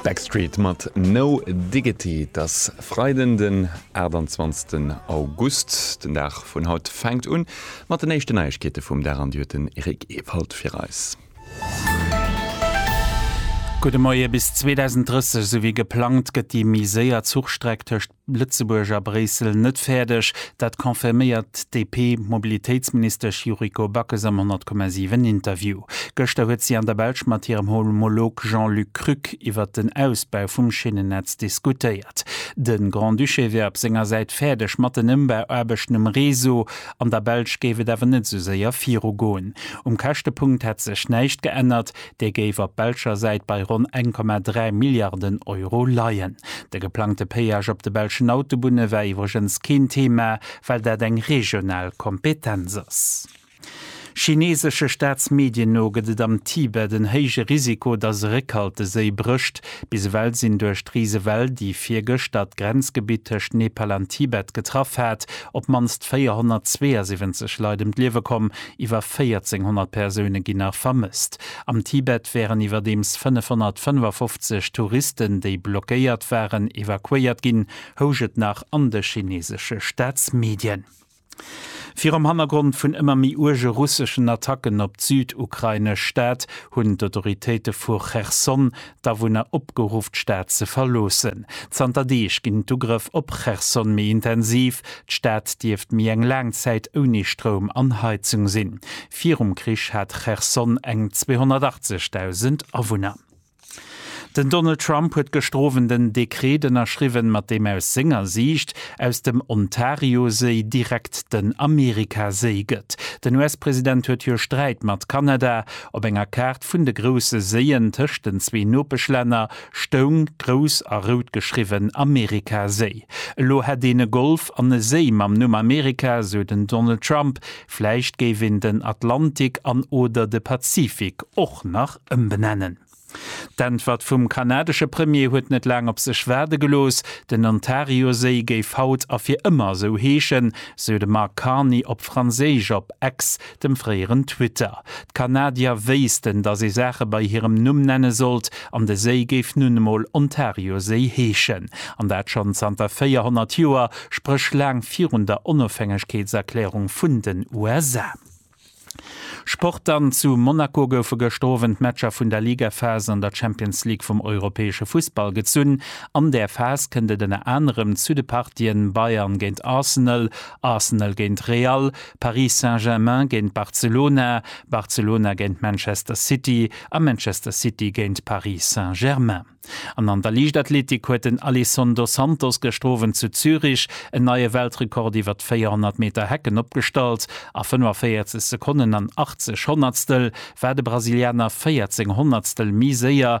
Backstreet mat No Diggity. Et ass Freiden den 28 August. Den Dag vun haut fänkt un mat den éischten Neiegkeete vum Dag an déi huet den Eric Ewald fir eis. Gudde Moie, Bis 2030 esou wéi geplangt gëtt déi méi séier Zuchstreck tëscht. Lëtzebuerg a Bréissel net fäerdeg, dat confirméiert d'DP-Mobilitéitsministesch Yuriko Backes am 100,7 Interview. Gëschter huet si an der Belsch mat hirem Homolog Jean-Luc Krück iwwert den Ausbau vum Schinnennetz diskutéiert. De Grand-Duché wär op senger Säit fäerdeg mat den Ëmbauaarbechten um Réseau. An der Belsch géif et awer net esou séier virugoen. Um Käschtepunkt hätt sech näischt geännert, Dee géif op belscher Säit bei ronn 1,3 Milliarden Euro leien. De geplangte Péage op de belschen Autobunne war iwwregens keen Thema, well dat eng regional Kompetenz ass. Chineesesche Staatsmedien no gëtt et am Tibet en héije Risiko, datt e Réckhalteséi brécht. Bis ewell sinn duerch d'Risewell, déi virgëschter d'Grenzgebitt tëscht Nepal an Tibet getraff hat, op d'mannst 472 Leit ëm d'Liewe komm, Iwwer 1400 Persoune ginn nach vermësst. Am Tibet wären iwwerdeems 555 Touristen, déi blockéiert waren, evakuéiert ginn, housch et nach an de chineesesche Staatsmedien. Virum Hannergrond vun ëmmer méi uerge russeschen Attacken op d'südukrainesch Stad hunn d'Autoritéite vu Cherson d'Awunner opgeruff d'Stad ze verloossen. Zanter Deeg ginn d'Ugrëff op Cherson méi intensiv. D'Stad dierft méi eng laang Zäit ouni Stroum an Heizung sinn. Virum Krich hat Cherson eng 280.000 Awunner. Den Donald Trump huet gëschter Owend en Dekreet ënnerschriwwen, mat deem aus senger Siicht aus dem Ontarioséi direkt den Amerikaséi gëtt. Den US-President huet jo Sträit mat Kanada. Op enger Kaart Lëscht vun de grousse Séien tëscht den zwee Nopeschlänner stoung, grouss a rout geschriwwen, Amerika-Séi. Elo hätt een e Golf an e Séi mam Numm Amerika, sou den Donald Trump. Vläicht géif een den Atlantik an oder de Pazifik och nach ëmbenennen. D'Äntwert vum kanadesche Premier huet net laang op sech waarde gelooss. Den Ontario-Séi géif haut a fir ëmmer esou heeschen, sou de Mark Carney op Franséisch op X. dem fréieren Twitter. D'Kanadier wéissten, datt ee Saache bei hirem Numm nenne sollt, an de Séi géif nun emol Ontarioséi heeschen. An dat schonn zanter 400 Joer, spréch laang virun der Onofhängegkeetserklärung vun den USA. Sport dann, Zu Monaco goufe gëschter Owend d'Matcher vun der Ligaphas an der Champions League vum europäesche Fussball gezunn. An där Phas kënnt et ënner anerem zu de Partien Bayern géint Arsenal, Arsenal géint Real, Paris Saint-Germain géint Barcelona, Barcelona géint Manchester City a Manchester City géint Paris Saint-Germain. An an der Liichtathletik huet den Alisson dos Santos gëschter Owend zu Zürich en neie Weltrekord iwwer d'Véierhonnert Meter Hecken opgestallt. A 45 Sekonnen an 80 Honnertstel war de Brasilianer 14 Honnertstel méi séier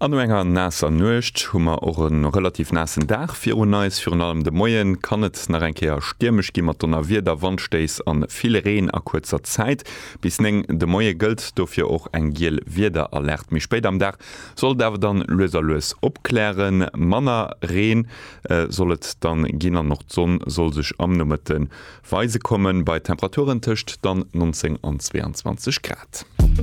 An no enger naasser Nuecht hu mer och e relativ naassen Dag virun eis. Virun allem de Moie kann et nach eng Kéier stiermesch gi mat Donnerwieder, Wandstéiss a vill Reen a kuerzer Zäit. Bis 9 de Moie gëllt dofir och eng giel Wiederalerte. Méi spéit am Dag soll et awer dann lues a lues opklären. Manner Reen soll et dann ginn an och d'Sonn soll sech am Nomëtte weise kommen bei Temperaturen tëscht dann 19 an 22 Grad.